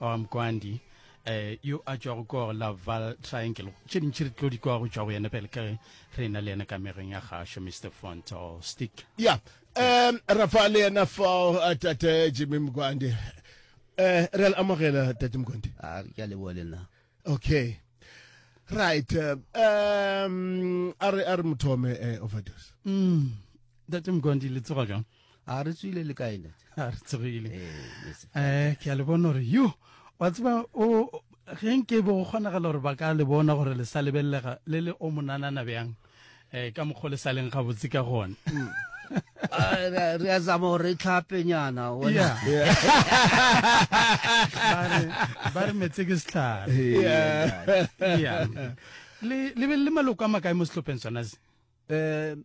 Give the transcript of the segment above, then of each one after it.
wa mkwandi eh yo a tšwago ko gore la val triangle tše dintši re tlo di kwa go tšwa go yena pele ka ge re na le yena ka mereng ya gašo mr fonto stick ya um ra fa le yena fao uh, tate jimmy mkwandi um re le amogela tate mkwandi a ke a leboa le nna okay right uh, um a re a re mothome eh, overdose mm date mkondi le tsoga jang a re tswile le kae ne a re tsogile eh ke a le bona gore yo wa tseba o ge nke bo go kgonagala gore ba ka le bona gore le sa lebelelega le le o monanana bjang eh ka mokgwa le sa leng gabotse ka gone re a zama gore tlhapenyana ba re metse ke setlhare le be le maloko a makae mo sehlopheng sona se um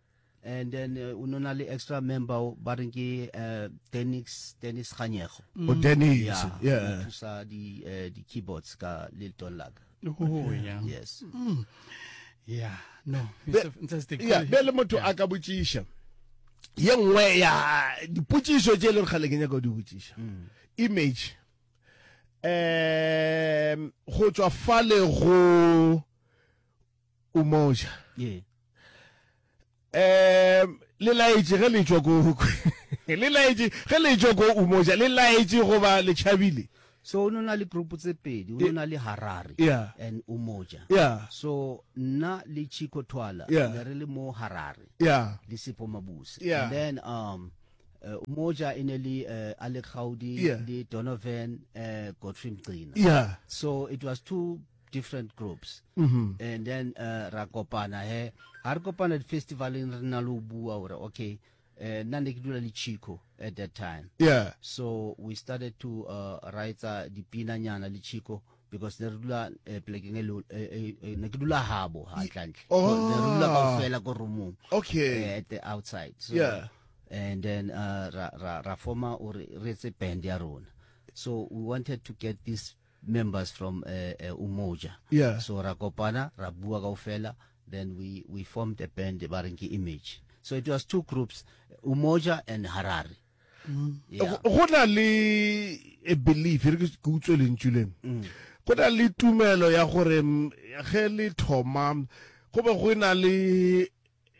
and then uh, o nona le extra member ba reng ke uh, dennis dennis ganyego mm. o oh, dennis yeah, yeah. thusa di uh, di keyboards ka le ton la ka oh yeah yes mm. yeah no fantastic yeah be le motho a ka botsisha ye nngwe ya dipotsiso tse e leng gale ke nyaka go di botsisa mm. image um go tswa fale go umoja yeah. um le laetše ge le tšwa ko le laetše ge le tšwa ko umoja le laetše goba le tšhabile so o nona le group tse pedi o nona le harare yeah. and umoja yeah. so nna le chico twala yeah. ne re le mo harare yeah. le sepo mabuse yeah. and then um uh, umoja e ne le uh, alec gaudi yeah. le donovan uh, godfrey mgcina yeah. so it was two different groups mm -hmm. and then uh, ra kopana he ha re kopana di-festivaleng re na le o bua gore okay uh, nna ne ke dula le chico at that time yeah so we started to uh, writsa dipinanyana le chico because ne re dula eh, plekeng e eh, eh, ne ke dula habo hantlantle oh. ne re dula ka fela ko roomong okay at the outside so, yeah and then uh, ra ra ra forma or re etse band ya rona so we wanted to get this members from uh, uh, Umoja. Yeah. So Rakopana, Rabua Gaufela, then we, we formed a band, Barinki Image. So it was two groups, Umoja and Harare. Mm. Yeah. go na le a belief re ke utswe lentšu leno mm. go na le tumelo ya gore mm, ge le thoma go be go na le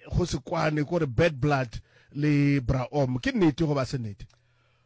go se kwane kore bad blood le braom ke nnete go ba se nnete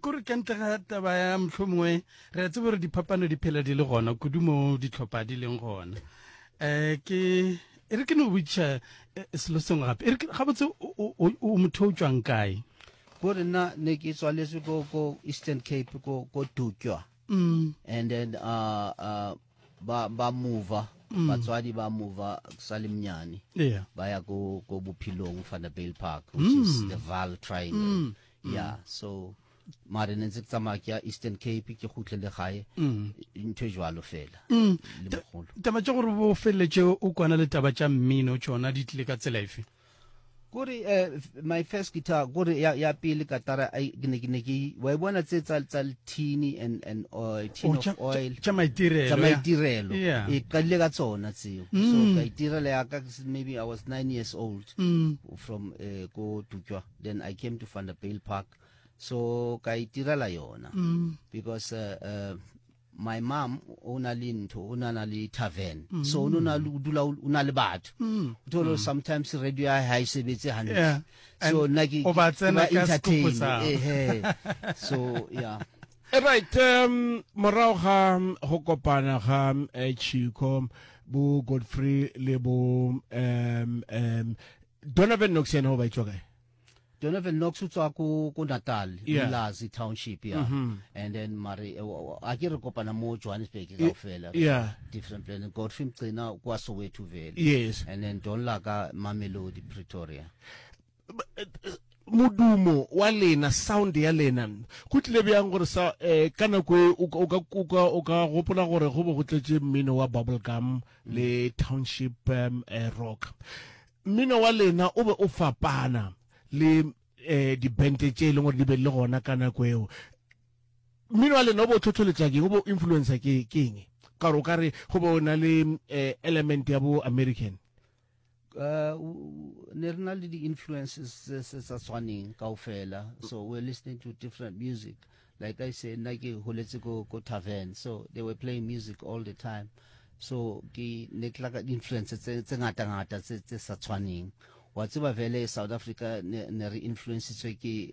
kore ka ntle ga taba ya motlho mongwe re a tsebo gore diphapano di phela di le gona kudu mo ditlhopha di leng gona um ke e re ke no botšiša eh, selo sengwe gape e re ga botse o motho o tswang kae kore nna ne ke tswaletswe ko eastern cape ko dukwa mm. and then uh, uh, ba, ba mova mm. batswadi ba mova sa le mnyane yeah. ba ya ko, ko bophelong fanabail park which mm. is the val triangle mm. ya so mare ne ntse ke tsamaya ke ya eastern cape ke gutle le gae mm. ntho e jalo fela mm. taba tša gore bo feleletse o kwana le taba tša mmino tsona di tlile ka tsela efe kore eh, my first guitar kore ya, ya pele katara ke ne ke ne ke wa e bona tse tsa tsa tini and and oil tin oh, of oil tsa maitirelo tsa maitirelo e qalile ka tsona tseo mm. so ka itirela ya ka maybe i was 9 years old mm. from eh, ko tutswa then i came to vanderbale park so ka itirela yona mm. because uh, uh, my mom o na le ntho o na na le tavern mm. so o na le dula o na le batho mm. o tholo mm. sometimes radio ya ha e sebetse hantle yeah. so nna ke o ba tsena ka entertain eh so yeah right um morago ga um, go kopana ga um, eh, chico bo godfrey le bo um um donovan knox yena o ba etswa kae Donovan Knox o tswa ko ko Natal yeah. Ilazi township ya mm -hmm. and then mare eh, a ke re kopana mo Johannesburg ka fela yeah. different plan Godfrey Mcina kwa Soweto vele yes and then Don Laka Mamelodi Pretoria eh, modumo wa lena sound ya lena go tlile bjang gore sa eh, ka nako e o ka gopola gore go bo go tletse mmino wa bubble gum le Township Rock. Mmino wa lena o be o fapana le dibente tše e leng gore di be le gona ka nako eo. Mmino wa lena o be o tlhotlholetša keng, o be o influencer keng? Ka gore o ka re go be o na le element ya bo American. uh, ne re na le di-influences tse se sa tshwaneng kao fela so we're listening to different music like i say nna ke holetse ko ko tavern so they were playing music all the time so ke ne ke laka di-influence tse ngata-ngata tse sa tshwaneng wa tseba vele south africa ne re influencetswe ke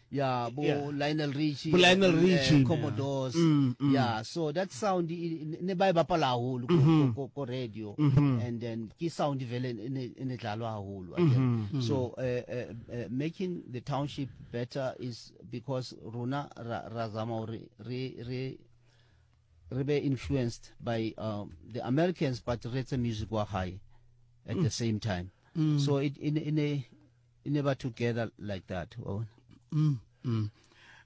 yeah bo yeah. Lionel Richie bo Lionel eh, Richie uh, Commodores yeah. Mm, mm. yeah so that sound ne ba e bapala haholo ko, mm-hmm. ko, ko radio mm-hmm. and then ke sound vele ne ne dlalwa haholo mm-hmm. so uh, uh, uh, making the township better is because rona ra, ra zama hore re re re be influenced by um, the Americans but re tse music wa high at mm. the same time mm. so it in in a e ne ba together like that wa bona mm, mm.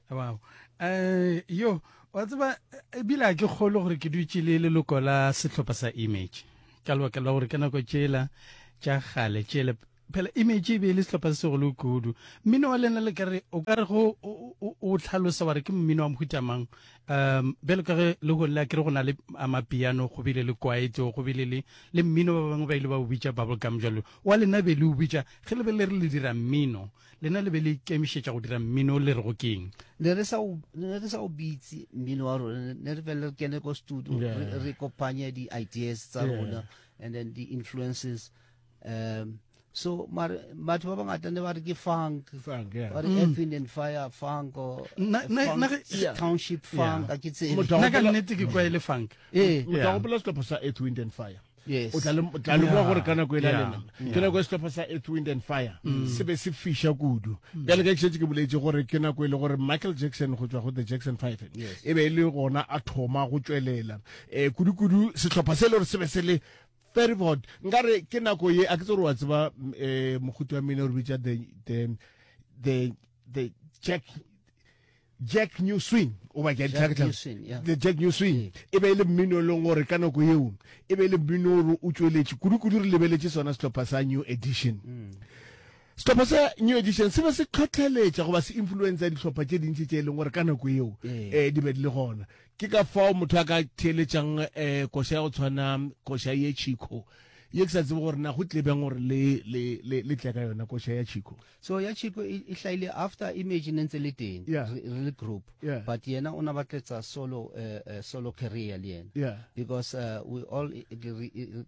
wow um yo wa tseba ebile a ke kgolo gore ke dutse le leloko la setlhopha sa image ka lebaka la gore ka nako tsela tša gale tsele phela image e be e le setlhopha se segolo kudu mmino wa lena le kare o ka re go o tlhalosa wa re ke mmino wa mohutamang um bjalo ka ge le gone le a kere go na le amapiano go bile le kwaetso go bile le le mmino ba bangwe ba ile ba o bitsa bubble gum jalo Wa lena be le o bitša, ge le be le re le dira mmino, lena le be le ikemišetša go dira mmino, le rego keng? Ne re sa o, ne re sa o bitse mmino wa rona, ne re fela re kene ko studio, yeah. re, re kopanye di-ideas tsa yeah. rona, and then the influences um so mare batho ba bangata ne ba re ke funk ba re mm. earth wind and fire funk or township funk a ke tsebe nna ka nnete ke kwaele funk ee eh. motho a gopola setlhopho sa earth wind and fire yes. o tla lemoga gore ka nako e la lena ke nako e setlhopha sa earth wind and fire mm. se be se fiša kudu mm. bjale ka kešetse ke boletse gore ke nako e le gore michael jackson go tswa go the jackson five e be e le gona a thoma go tšwelela um eh, kudu-kudu setlhopha se e le gore se be se le very board nkare ke nako ye a ke tse gore wa tseba um eh, mogote wa mene o re bitsa the the jack jack new swing o ba ke jack new swing yeah. the jack new swing yeah. e be e le mmino e leng gore ka nako yeo e be e le mmino gore o tsweletše kudu-kudu re lebeletše sona sehlopha sa new edition mm. sehlopha sa new edition se be se tlhotlheletša goba se influencer dihlopha tše dintši tše e leng gore ka nako yeo um yeah. eh, di be di le gona ke ka fao motho a ka theeletšang um eh, koša ya go tshwana koša ye chico ye ke sa tsebe gore na go tlebeng gore le tle ka yona koša ya chico so ya chico e, e hlaile after image ne ntse le teng yeah. re, re le group yeah. but yena o na batletsa solo uh, uh, solo career le yena yeah. because uh, we all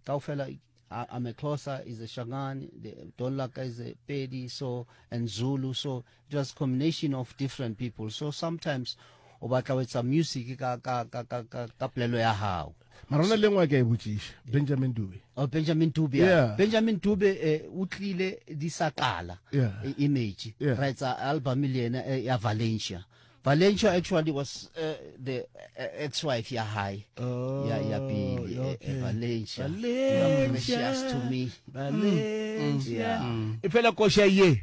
kaofela I'm a Xhosa, is a Shangani, the Dolaka is a Pedi, so and Zulu, so it was combination of different people. So sometimes o batla o etsa music ka ka ka ka ka, ka plelo ya hao mara ona le ngwe ke e botšiša benjamin dube oh, benjamin dube yeah. benjamin dube eh, o tlile di sa qala yeah. e image yeah. ra etsa album le yena eh, ya valencia Valencia actually was uh, the uh, ex-wife ya high oh, ya ya pili eh, okay. uh, Valencia Valencia to me Valencia mm. mm. yeah. mm. ifela kosha ye